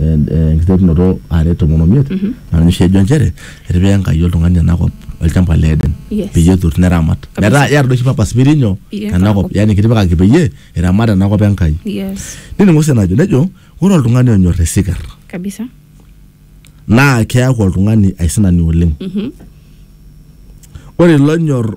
enkiterunoto are tomon omiet naa ninye oshi ejo nchere etipika Enkai oltung'ani enakop olchamba le Eden Yes. peyie etur neramat Kabisa. metaa iyata doi oshi purpose pirinyo Iye, enakop enakop. yani kitipikaki peyie iramat enakop Enkai yes nining Mose enajo nejo ore oltung'ani onyor isinkir kabisa naa keaku oltung'ani aisinani oleng ore ilo onyor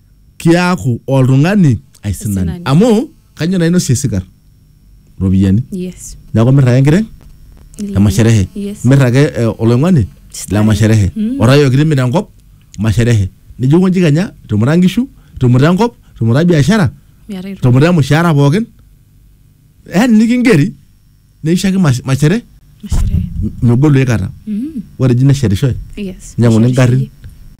kiaku oltung'ani aisinani Aisinani. amu kanyoo naa inosie sikar ropiyiani yes neeku mir ake enkiteng le masherehe yes mir ake eh, oloing'oni le Starehe. masherehe Mm. orayok timir enkop masherehe nijo konji kenya tumuta nkishu tumuta enkop tumuta biashara Miata irru- tumuta emushaara pookin yani nikingeri neishaki mas- mashere Mashere. m- megolu aikata Mm. ore eji neshetishoe Yes. nyang'uni ngarrin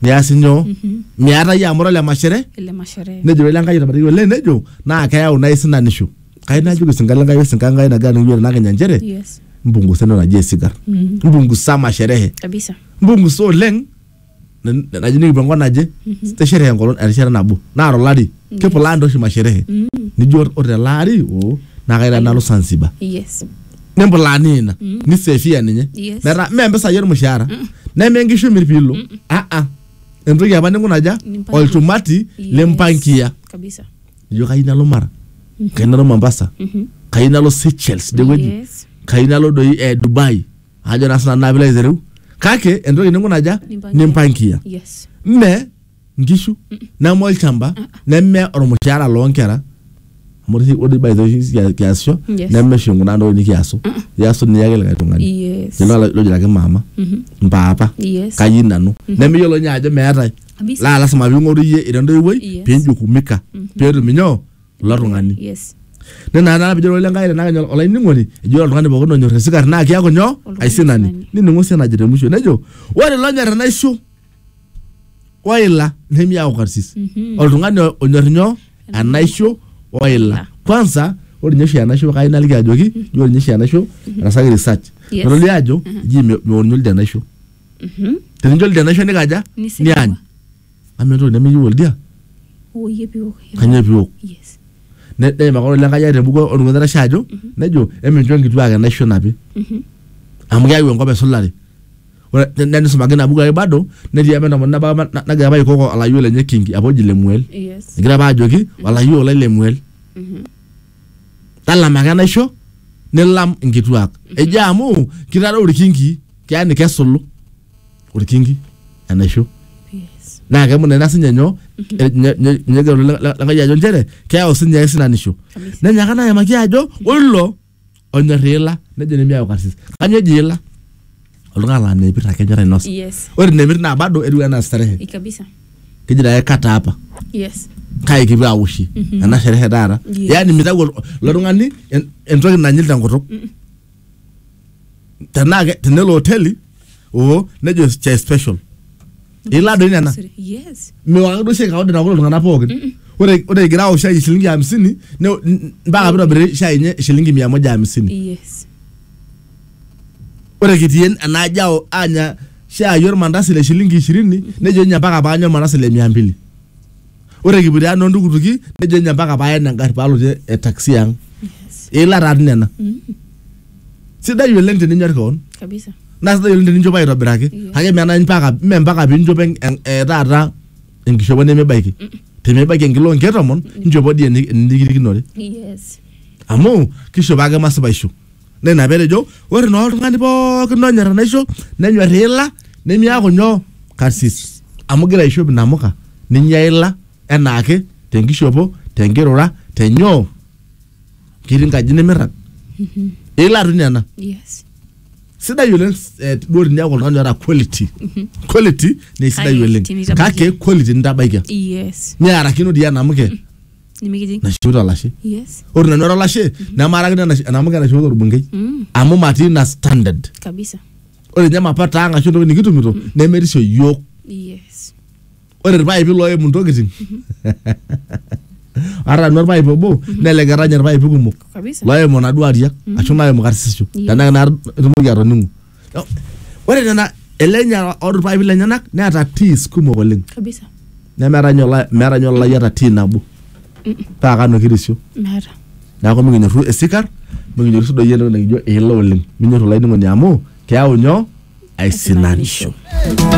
niasi nyoo Mhm. miata yie amu ore ole mashere Ele mashere. nejo ele enkai etabaraki oleng nejo naa keyau naa isinanisho kai najoki sinka lenkai osinka enkai nagira nikijo tenakenya nchere Yes. mpungusa entoki naji esigar Mm. mpungusa masherehe Kabisa. mpungusa oleng n- naji nikipuo enkop naje te sherehe enkolong erishata nabo naa tolari kepulaa ntoshi masherehe nijo or- ore tele ari oo naa kaira nalo Zanzibar yes nimpulaa ninye ina nisefia ninye Yes. metaa mee mpisai ormushaara neme nkishu imir piilo aa entoki apa ninkunaja Nimpangia. olchumati Yes. limpangia kabisa ijo kayieu nalo mara kayieu nalo mombasa kayieu nalo seychelles dewueji yes kayieu nalo doi eh, dubai ajo naa sinanu naa pilo aitereu kake entoki ninkunaja Nimpangia. nimpangia yes mme nkishu neme olchamba neme ormushaara loonkera amu ore oshi- ore by the way oshi kia- kiasisho Yes. neme oshi kuna ntokitin nikiasu iasu ninye ake likae tung'ani yes Lelo lo- lojiraki maama mpaapa yes kayieu nanu nemeyiolo ninye ajo meetae Kabisa. laa lasima ping'oru iyie ira entoiwuoi Yes. pinjukumika peetum inyoo ilo tung'ani yes nena naa pijo ole nkai tenakenya olainining'oni ejo ore oltung'ani pookin onyor esikar naa kiaku nyoo Oltung'ani aisinani aisinani. nining'u sii enajo te mwisho nejo ore lonyor enaisho oila nemiaku karsis Mhm. oltung'ani o- onyor nyoo enaisho oila kwanza ore ninye oshi enaisho kai naliki ajoki ji ore ninye oshi enaisho etasaki research Yes. natodua ajo ji me- meonyu oldia enaisho Mhm. tenijo oldia enaisho nikaja Nisigua. niany amu entoki nemeyieu oldia Hoo, iyie piok. kanyoo piok Yes. neim ake ore lenkai ate embuku oltung'ani oitashe ajo nejo emincho nkituak enaisho enapi Mhm. amu keyau enkop esulare ore ne- ne- nisumaki ina buku ake bado netii apa entomononi nabo apa na- nagira apa aikoko olayiok lenye kingi apa oji lemuel Yes. egira apa ajoki olayiok lai lemuel Mhm. talama ake enaisho nilam inkituak ejo amu kitadou irkinki keya nikesulu olkinki enaisho Yes. naa kemut ina sinye nyoo eh, nye- nye- nye ejo le- le- lenkai ajo nchere keyau sinye aisinanisho Kabisa. nenyaaka naa ayimaki ajo ore ilo onyor iila nejo nemiyau karsis kanyoo eji iila oltung'ani laa meipir ake enyor ainosa Yes. ore nemir naa bado etiu enaa starehe Eh, Kabisa. keji naye kata hapa Yes. kai kipuo awoshie ena sherehe taata Yes. yaani mitau ol- ilo tung'ani en- entoki nanyil tenkutuk tenaa ke- tenelo hoteli oo nejo chai special ilaa doi nena Yes. mewang ake duo shai kawaida naok iltung'anak pookin ore ore egira aok shai shilingi hamsini ne- n- mpaka pitobiri shai enye shilingi mia moja hamsini Yes. ore kitii en- ena aji ao anya shai ormandasi le shilingi ishirini nejo ninye mpaka paanya ormandasi le mia mbili ore ekipuoito ang noontukutuki nejo ninye mpaka paayen engarri paalotie e taxi ang eila taa dii nena sidai oleng teninyor kewon kabisa naa sidai oleng teninchopo aitobiraki Yes. kake menai mpaka mme mpaka piinchopo en- en- eh, taata enkishopo nemebaiki tenibaiki enkilo onkeek tomon inchopo dii eni- enirikirikinore yes amu kishopo ake masipaisho naa ina petejo ore naa oltung'ani pookin onyor enaisho nenyor iila nemiaku nyoo karsis amu igira aishop inamuka ninyia ila enaake tenkishopo tenkirura tenyoo ketii nkaji nimirrag ila toi nena Yes. sidai oleng eh, duo tiniaku oltung'ani oota quality quality naa isidai High oleng quality, nitabaiki. kake quality nitabaikia Yes. niarakino dii enamuke nimikijing naishoito olashe yes ore nanu era olashe nemarakino enash- enamuka enaishoito orbungei mm, amu matii ina standard kabisa ore ninye mapato ang ashu entoki nikitumito nemerisio yiok yes ore irpaipi loimu ntokitin ata nanu orpaip obo neleketa nye irpaipi kumok kabisa loimu naduo ariak ashu naimu karsisho Iya. tenaa naa itumoki atoning'u No, ore nena ele nyara orpaipi lenyenak neeta teas kumok oleng kabisa nemeeta ninye ola- meeta ninye olalai oota tii nabo paa kanu kirisio meeta neeku mikinyorru esikar mikinyorru sii doi entoki nikijo eila oleng minyorru olainining'oni amu keyau nyoo aisinanisho